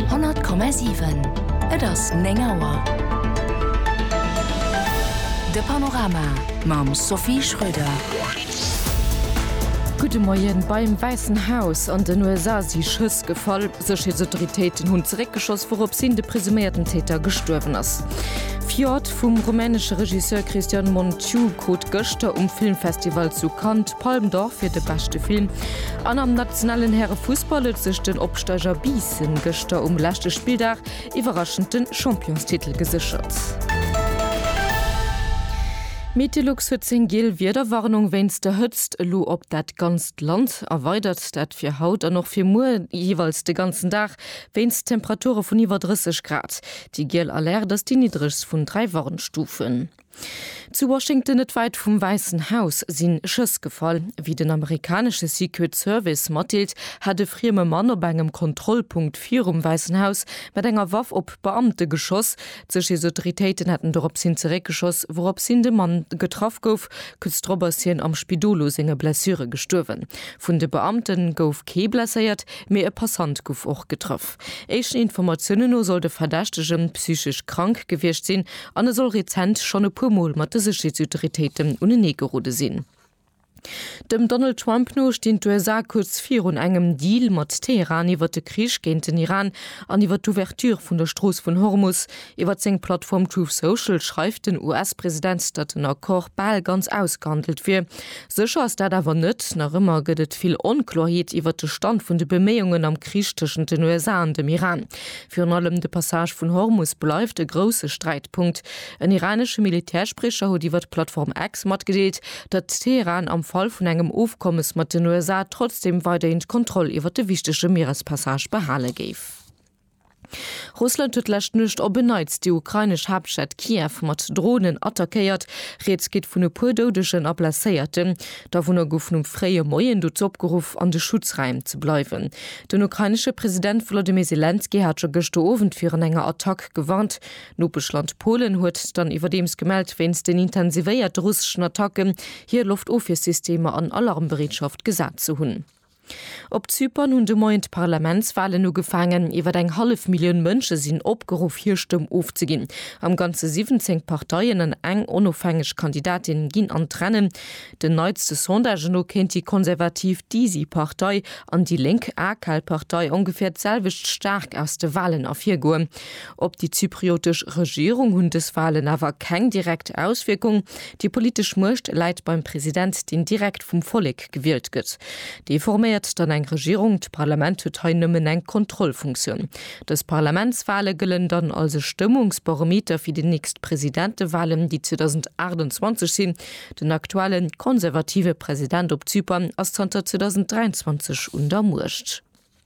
100,7 Et ass 9 Auer. De Panorama mam Sophie Schröder. Gudde Moien. Beim Wäissen Haus an den USA si Schëss gefall. Sécherheetsautoritéiten hunn zeréckgeschoss, wourops hin de presuméierten Täter gestuerwen ass. Fjord vum rumänesche Regisseur Cristian Muntiu krut gëschter um Filmfestival zu Cannes Palme d'Or fir de beschte Film. An am nationalen Härefussball huet sech den Opsteiger Biissen gëschter um leschte Spilldag iwwerraschend de Championstitel geséchert. Metelux huet seng giel Wiederwarnung wéinst der Hëtzt elo op dat ganzt Land erweidert. Dat fir haut an och fir muer jeeweils de ganzen Dag wéinst Temperature vun iwwer 30 Grad. Déi giel Alerte ass déi niddregst vun dräi Warnstufen. Zu Washington, net wäit vum Wäissen Haus, si Schëss gefall. Wéi den amerikanesche Secret Service matdeelt, hat e frieme Mann op engem Kontrollpunkt virum Wäissen Haus mat enger Waff op Beamte geschoss. D'Sécherheetsautoritéiten hätten dorops hin zeréckgeschoss, wourops hin de Mann getraff gouf. Kuerz drop ass hien am Spidol u senge Blessure gestuerwen. Vun de Beamte gouf kee blesséiert, mee e Passant gouf och getraff. Éischten Informatiounen no soll de Verdächtege psychesch krank gewiescht sinn an e soll rezent schonn e puer Mol mat de Sécherheetsautoritéiten unenee gerode sinn. Dem Donald Trump no stinn d'USA kuerz virun engem Deal mat Teheran iwwer de Krich géint den Iran an iwwer d'Ouverture vun der Strooss vun Hormus, Iwwer seng Plattform Truth Social schreift den US-President, datt den Accord bal ganz ausgehandelt wier. Sécher ass dat awer net. Nach ëmmer gëtt et vill Onkloerheet iwwer de Stand vun de Beméiungen am Krich tëschent den USA an dem Iran. Virun allem de Passage vun Hormus bleift e grousse Sträitpunkt. En iranesche Militärspriecher huet iwwer d'Plattform X matgedeelt, datt Teheran am Fall vun engem Ofkommes mat den USA trotzdeem weiderhin d'Kontroll iwwer de wichtege Mierespassage behale géif. Russland huet d'lescht Nuecht op en Neits déi ukrainesch Haaptstad Kiew mat Dronen attackéiert. Rieds geet vun e puer Doudegen a Blesséierten. D'Awunner goufen um fréie Moien dozou opgeruff, an de Schutzraim ze bleiwen. Den ukrainesche President Wolodymyr Selenskyj hat scho gëschter Owend virun enger Attack gewarnt. D'Nopeschland Polen huet dann iwwerdeems gemellt, wéinst den intensivéierte russeschen Attacken hir Loftofwiersystemer an Alarmbereetschaft gesat ze hunn. Op Zypern hunn de Moien d'Parlamentswalen ugefaangen. Iwwer eng hallef Millioun Mënsche sinn opgeruff hir Stëmm ofzeginn. Am Ganze 17 Parteien an eng onofhängeg Kandidatin ginn an d'Rennen. Den neitste Sondage no kéint déi konservativ DISI Partei an déi lénk AKAL Partei ongeféier d'selwecht staark aus de Walen ervirgoen. Op déi zypriotesch Regierung hunn dës Walen awer keng direkt Auswierkung. Déi politesch Muecht läit beim President, deen direkt vum Vollek gewielt gëtt. Dee forméiert dann eng Regierung. D'Parlament huet hei nëmmen eng Kontrollfunktioun. Dës Parlamentswale gëllen dann als e Stëmmungsbarometer fir déi nächst Presidentewalen, déi 2028 sinn. Den aktuelle konservative President op Zypern ass zanter 2023 un der Muecht.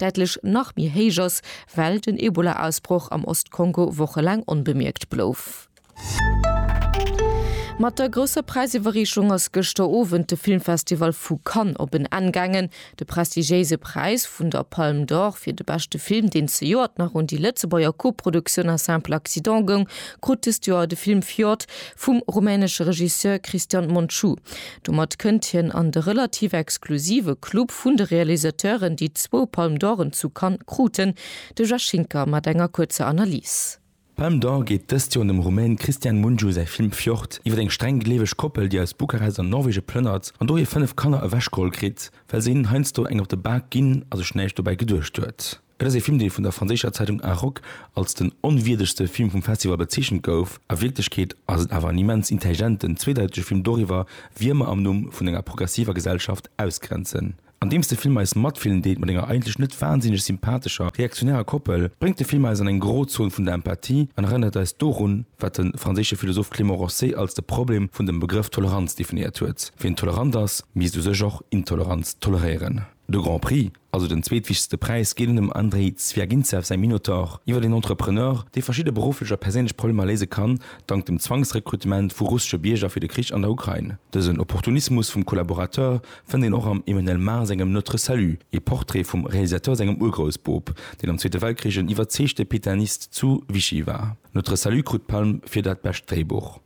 däitlech nach méi héich ass, well den Ebola-Ausbroch am Ost-Kongo wochelaang onbemierkt blouf. Mat der grousser Präisiwwerreechung ass gëschter Owend de Filmfestival vu Cannes op en Enn gaangen. De prestigiéise Präis vun der Palme d'Or fir de beschte Film, deen zejoert nach un déi Lëtzebuerger Koproduktioun Un simple accident goung, krut dëst Joer de Film Fjord vum rumänesche Regisseur Cristian Munchu. Domat kënnt hien an de relativ exklusive Club vun de Realisateuren, déi zwou Palme d'Oren zu Cannes kruten. De Jeff Schinker mat enger kuerzer Analys. D'Palme d'Or geet dëst Joer un dem Rumän Cristian Mungiu säi Film Fjord iwwer eng streng gleeweg Koppel, déi aus Bukarest an Norwege plënnert an do hir fënnef Kanner ewechgeholl kritt, well se hinnen heiansdo eng op de Bak ginn a sech näischt dobäi geduecht huet. Et ass ee Film, dee vun der franséischer Zeitung Arok als den onwierdegste Film vum Festival bezeechent gouf. A Wierklechkeet ass et awer en immens intelligenten, zweedeitege Film doriwwer, wie mer am Numm vun enger progressiver Gesellschaft ausgrenzen. Andeems de Film eis Matfillen deet mat enger eigentlech net wansinneg sympathescher, reaktionärer Koppel, bréngt de Film eis an eng Grozon vun der Empathie an erënnert eis dorun, wat de franséische Philosoph Clément Rosset als de Problem vun dem Begrëff Toleranz definéiert huet, Wien tolerant ass, misst u sech och Intoleranz toleréieren. De Grand Prix. also den zweetwichtegste Präis, geet un dem Andrei Zwiagintsev säi Minotaur iwwer een Entrepreneur, dee verschidde berufflech a perséinlech Problemer léise kann, dank dem Zwangsrekrutement vu russesche Bierger fir de Krich an der Ukrain. Dësen Opportunismus vum Collaborateur fënnt een och am Emmanuel Mar sengem Notre Salut, ee Portrait vum Realisateur sengem Urgroussboob, deen am Zweete Weltkrich en iwwerzeegte Pétainist zu Vichy war. Notre Salut krut d'Palm fir dat bescht Dréibuch.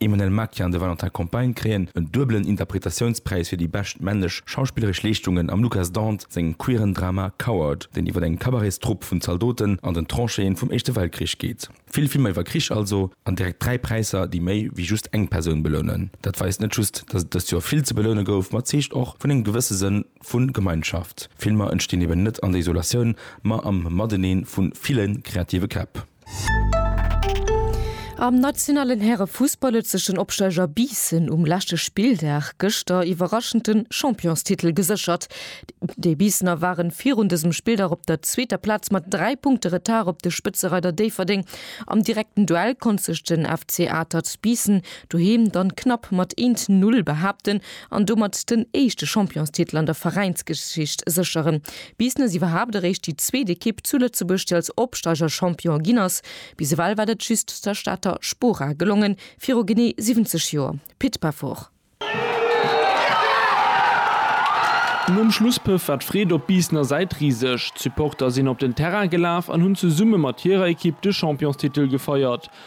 Emmanuelle Maquin an de Valentin Compagne kréien en duebelen Interpretatiounspräis fir déi bescht männlech schauspilleresch Leeschtungen am Lucas Dant sengem queeren Drama Coward, deen iwwer eng Cabaretstrupp vun Zaldoten an den Tranchéen vum Éischte Weltkrich geet. Vill Filmer iwwer Krich also, an direkt dräi Präisser, déi méi wéi just eng Persoun belounen. Dat weist net just, datt et dëst Joer vill ze beloune gouf, ma zeegt och vun engem gewësse Sënn vu Gemeinschaft. Filmer entstinn eben net an der Isolatioun, ma am Mateneen vu ville kreative Käpp. Am nationalen Härefussball huet sech den Opsteiger Biissen um leschte Spilldag gëschter iwwerraschend de Championstitel geséchert. Déi Biissener ware virun dësem Spilldag op der zweeter Plaz mat 3 Punkte Retard op de Spëtzereider Déifferdeng. Am direkten Duell konnt sech den FC Atert Biissen doheem dann knapp mat 1, 0 behaapten. an domat den éischte Championstitel an der Veräinsgeschicht sécheren. Bis nes iwwerhaapt eréischt déi zweet Ekipp zu Lëtzebuerg, déi als Opsteiger Champion ginn ass. Bis ewell war dat just der Stater Spora gelongen, viru genee 70 Joer. Pit Peffer. Nom Schlusspëff war d'Freed op Biissener Säit riseg. D'Supporter sinn op den Terrain gelaf an hunn zesumme mat hirer Ekipp de Championstitel gefeiert.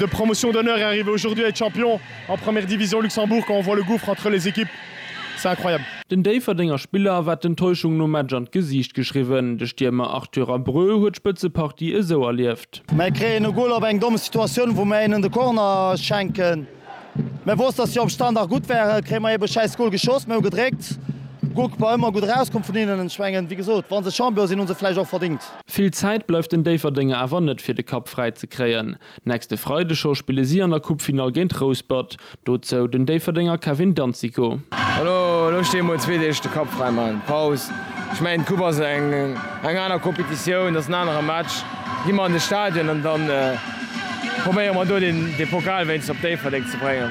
De Promotion d'honneur est arrivé aujourd'hui à être champion en première division Luxembourg quand on voit le gouffre entre les équipes c'est incroyable. Den Déifferdenger Spiller war d'Enttäuschung nom Match an d'Gesiicht geschriwwen. De Stiermer Arthur Abreu huet d'Spëtzepartie esou erlieft. Mär kréien e Goal op eng domm Situatioun, wou mär hinnen de Corner schenken. Mär wousst, dass si op Standard gutt waren, kréie mer eebe e schäiss Goal geschoss. Mir hu gedréckt, Goalkeeper ëmmer gutt erauskomm vun hinnen. Ech mengen, wéi gesot, wa se Champion sinn, hu se vläicht och verdéngt. Vill Zäit bleift den Déifferdenger awer net fir de Kapp fräi ze kréien. Nächste Freide scho spille si an der Coupefinall géint Rouspert. Dozou den Déifferdenger Kevin Danzico. Elo looss dir emol zwee Deeg de Kapp fräi maachen, Paus. Ech mengen d'Coupe ass eng aner Competitioun, et ass en anere Match. Gi mer an de Stadion an dann. Probéiere mer do de Pokal wéinst op Déifferdeng ze bréngen.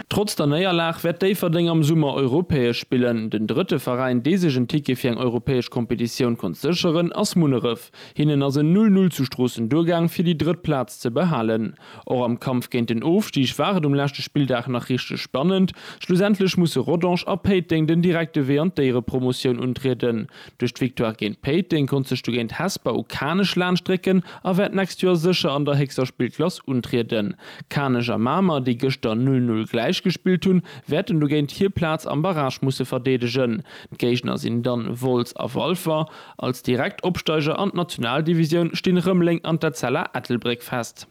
Trotz der Néierlag wäert Déifferdeng am Summer europäesch spillen. Den drëtte Veräin, dee sech en Ticket fir eng europäesch Kompetitioun konnt sécheren, ass Munneref. Hinnen ass en Null Null zu Stroossen duergaang, fir déi drëtt Plaz ze behalen. Och am Kampf géint den Ofstig war et um leschte Spilldag nach richteg spannend. Schlussendlech musse Rodange a Péiteng den direkte Wee an d'Éierepromotioun untrieden. Duerch d'Victoire géint Péiteng konnt sech dogéint Hesper u Kanech laanschtrécken a wäert d'nächst Joer sécher an der héchster Spillklass untrieden. Kanech a Mamer, déi gëschter 'Null Null' gläich gespillt hunn, wäerten dogéint hir Plaz am Barrage musse verdeedegen. D'Géigner sinn dann Wolz a Walfer. Als direkt Opsteiger an d'Nationaldivisioun stinn Rëmeleng an d'Etzella Ettelbréck fest.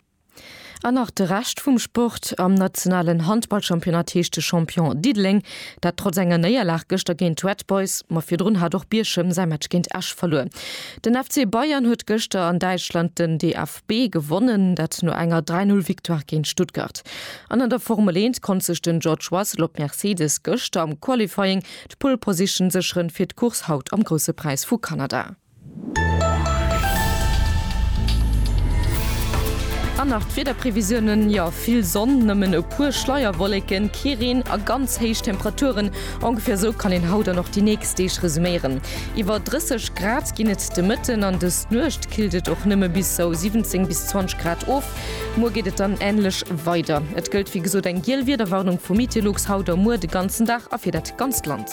An nach de Rescht vum Sport, Am nationalen Handballchampionnat heescht de Champion Diddeleng. Dat trotz enger Néierlag gëschter géint d'Red Boys. Ma virdrun hat och Bierchem säi Match géint Esch verluer. Den FC Bayern huet gëschter an Däitschland den DFB gewonnen, dat no enger 3 Null Victoire géint Stuttgart. An an der Formel 1 konnt sech den George Russell op Mercedes gëschter am Qualifying d'Pole Position sécheren fir d'Course haut am Grousse Präis vu Kanada. An nach d'Wiederprevisiounen, jo vill Sonn, nëmmen e puer Schleierwolleken, kee Reen a ganz héich Temperaturen. Ongeféier esou kann een haut an och déi nächst Deeg resuméieren. Iwwer 30 Grad ginn et de Mëtten an dës Nuecht killt et och nëmme bis sou 17 bis 20 Grad of. Muer geet et dann änlech weider. Et gëllt wéi gesot eng giel Wiederwarnung vu Mitelux haut a muer de ganzen Dag a fir dat ganzt Land.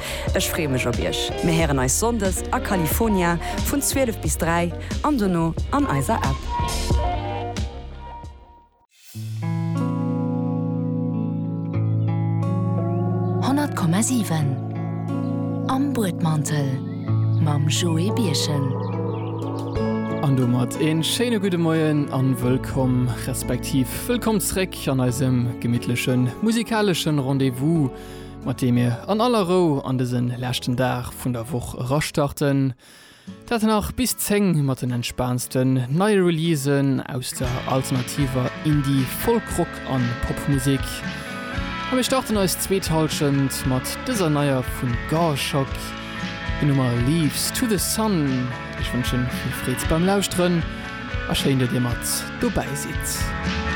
Ech freeë mech op iech. Mir héieren eis Sonndes a California vun 12 bis 3 an dono an eiser App. Honnert Komma siwen Am Buedmantel mam Joé Birchen. An domat een schéine gudde Moien an wëllkomm, respektiv wëllkomm zréck an eisem gemittlechen musikaleschen Rendez-vous. mat deem mir an aller Rou an dëse leschten Dag vun der Woch erastarten, dat nach bis 10 mat den entspaansten neie Releasen aus der alternativer Indie-, Folk-Rock an Popmusek. A mir starten eis zweet Hallschent mat dëser neier vun Garshock, hir Nummer Leaves to the Sun. Ech wënschen vill Freed beim Lauschteren a schéin, datt dir mat dobäi sidd.